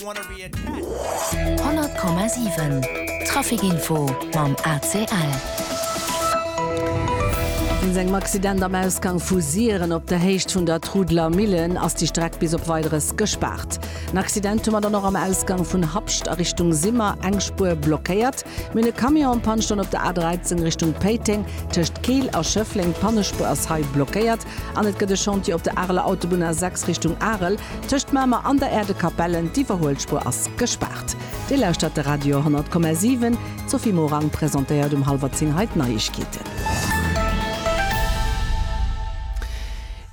100,7 Traficinfo mam ACL. Wéinst engem Accident am Ausgang vu Siren op der Héicht vun der Trudeler Millen ass déi Streck bis op Weideres gespaart. En Accident hu mer dann och am Ausgang vun Habscht a Richtung Simmer, eng Spuer blockéiert. Mir hunn e Camion am Panne stoen op der A13 Richtung Péiteng, tëscht Keel a Schëffleng. D'Pannespuer ass hei blockéiert. An et gëtt e Chantier op der Areler Autobunn A6 Richtung Arel, tëscht Mamer an der Aire de Capellen. D'Iwwerhuelspuer ass gespaart. Dir lauschtert de Radio 100,7. D'Sophie Morang presentéiert um hallwer 10 hei d'Neiegkeeten.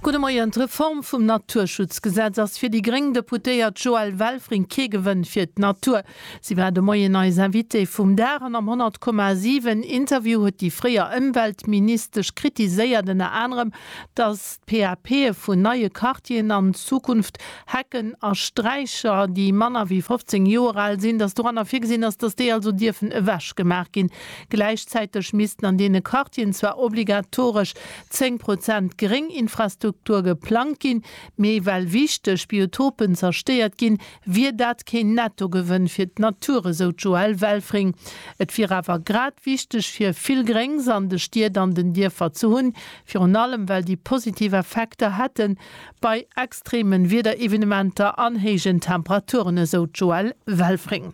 Gudde Moien. D'Reform vum Naturschutzgesetz ass fir déi gréng Deputéiert Joëlle Welfring kee Gewënn fir d'Natur. Si war de Moien eis Invitée vum Dag an am 100,7 Interview huet déi fréier Ëmweltministesch kritiséiert ënner anerem, datt d'PAPe vun neie Quartieren an Zukunft, Hecken a Sträicher, déi manner wéi 15 Joer al sinn, datt doranner virgesinn ass, datt déi also dierfen ewechgemaach ginn. Gläichzäiteg missten an deene Quartieren zwar obligatoresch 10 Prozent Grénginfrastruktur geplangt ginn, mee well wichteg Biotopen zerstéiert ginn, Wier dat keen Nettogewënn fir d'Natur, esou d'Joëlle Welfring. Et wier awer grad wichteg fir vill Gréngs an de Stied an den Dierfer ze hunn, virun allem well déi positiv Effekter hätte bei extreeme Wiederevenementer an héijen Temperaturen, esou d'Joëlle Welfring.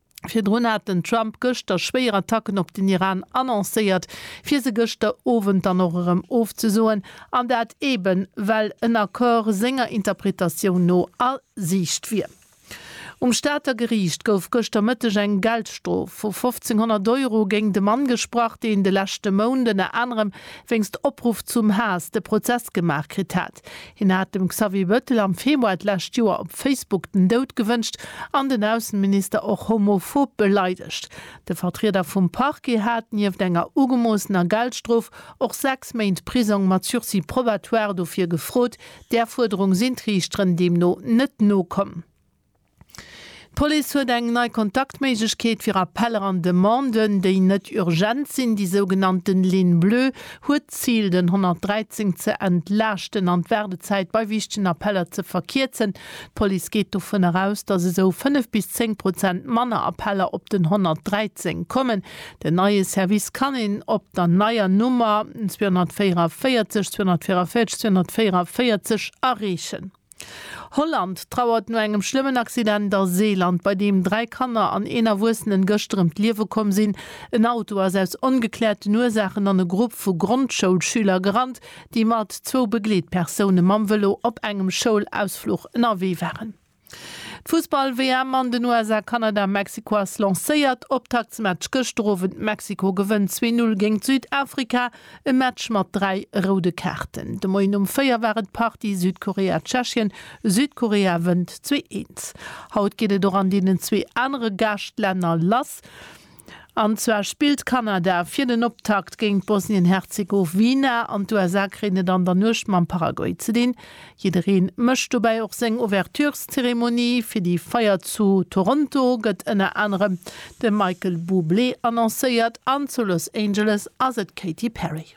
Virdrun hat den Trump gëschter schwéier Attacken op den Iran annoncéiert, fir se gëschter Owend dann och erëm ofzesoen, an dat eben, well en Accord senger Interpretatioun no a Siicht wier. Um Stater Geriicht gouf gëschter Mëtteg eng Geldstrof vu 1.500 Euro géingt e Mann gesprach, deen de leschte Mount ënner anerem wéinst Opruff zum Haass de Prozess gemaach kritt hat. Hien hat dem Xavier Bettel am Februar d'lescht Joer op Facebook den Doud gewënscht an den Ausseminister och homophob beleidegt. De Vertrieder vum Parquet hat, nieft enger ugemoossener Geldstrof, och sechs Méint Prisong mat Sursis probatoire dofir gefrot. Där Fuerderung sinn d'Riichteren deemno net nokomm. D'Police huet eng nei Kontaktméiglechkeet fir Appeller an Demanden, déi net urgent sinn. Déi sougenannte Ligne Bleue huet d'Zil, den 113 ze entlaaschten an d'Waardezäit bei wichtegen Appeller ze verkierzen. D'Police geet dovun eraus, datt esou 5 bis 10 Prozent manner Appeller op den 113 kommen. Den neie Service kann een op der neier Nummer 244 244 244 erreechen. Holland trauert no engem schlëmmen Accident a Seeland, bei deem dräi Kanner an een Erwuessenen gëschter ëm d'Liewe komm sinn. En Auto ass aus ongekläerten Ursaachen an e Grupp vu Grondschoulschüler gerannt, déi mat zwou Begleetpersoune mam Vëlo op engem Schoulausfluch ënnerwee waren. D'Fussball-WM an den USA, Kanada, Mexiko ass lancéiert. Optaktsmatch gëschter Owend, Mexiko gewënnt zwee Null géingt Südafrika. E Match mat dräi roude Kaarten. De Moien um 4 war et Partie Südkorea-Tschechien. Südkorea wënnt 2-1. Haut geet et och an deenen zwee anere Gaaschtlänner lass. An zwar spillt Kanada fir den Optakt géint Bosnien-Herzegowina an d'USA kréien et an der Nuecht mam Paraguay ze dinn. Jiddereen mécht dobäi och seng Ouvertureszeremonie. Fir déi Feier zu Toronto gëtt ënner anerem de Michael Bublé annoncéiert an zu Los Angeles ass et d'Katy Perry.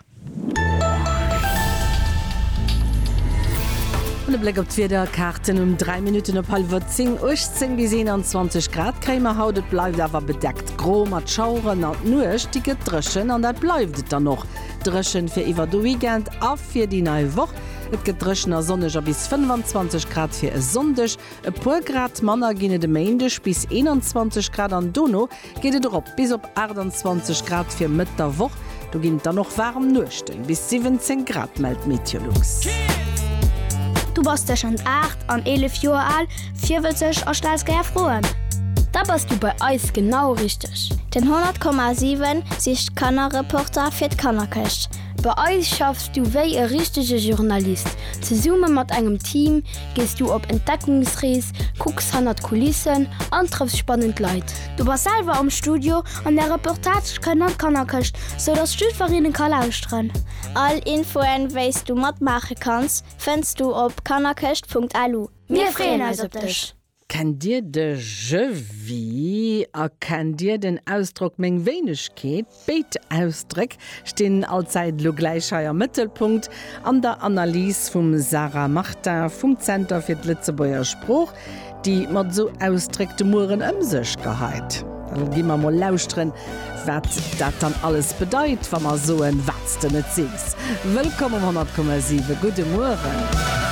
An e Bléck op d'Wiederkaarten um 3 Minutten op hallwer 10, 18 bis 21 Grad kréie mer haut. Et bleift awer bedeckt gro mat Schaueren an d'Nuecht déi gëtt dréchen an dat bleift et dann och dréchen fir iwwer de Weekend a fir déi nei Woch. Et gëtt dréchen a sonneg a bis 25 Grad fir e Sonndeg. E puer Grad manner ginn et e Méindeg, bis 21 Grad an dono geet et erop bis op 28 Grad fir Mëtt der Woch. Do ginn et dann och waarem Nuechten, bis 17 Grad mellt d'Meteolux. Du bass tëschent 8 an 11 Joer al, virwëtzeg a stells gär Froen? Da bass du bei eis genau richteg! Den 100,7 sicht Kannerreporter fir d'Kannerkëscht. Bei eis schaffs du wéi e richtege Journalist. Zesumme mat engem Team gees du op Entdeckungsrees, kucks hannert d'Kulissen an trëffs spannend Leit. Du bass selwer am Studio an där Reportage kënnt an d'Kannerkëscht, sou dass jidfereen e ka lauschteren. All Infoen, wéi s du matmaache kanns, fënns du op kannerkëscht.lu. Mir freeën eis op dech! Kennt Dir de Je vis a kennt Dir den Ausdrock meng Wéinegkeet? Béid Ausdréck stinn allzäit elo gläich hei am Mëttelpunkt an der Analys vum Sarah Martin vum Zenter fir d'Lëtzebuerger Sprooch, déi mat esou Ausdréck de Mueren ëm sech geheit. Lo gi mer mol lauschteren, wat dat dann alles bedeit, wa mer soen, Wat s de net sees. Wëllkomm um 100,7. Gudde Mueren.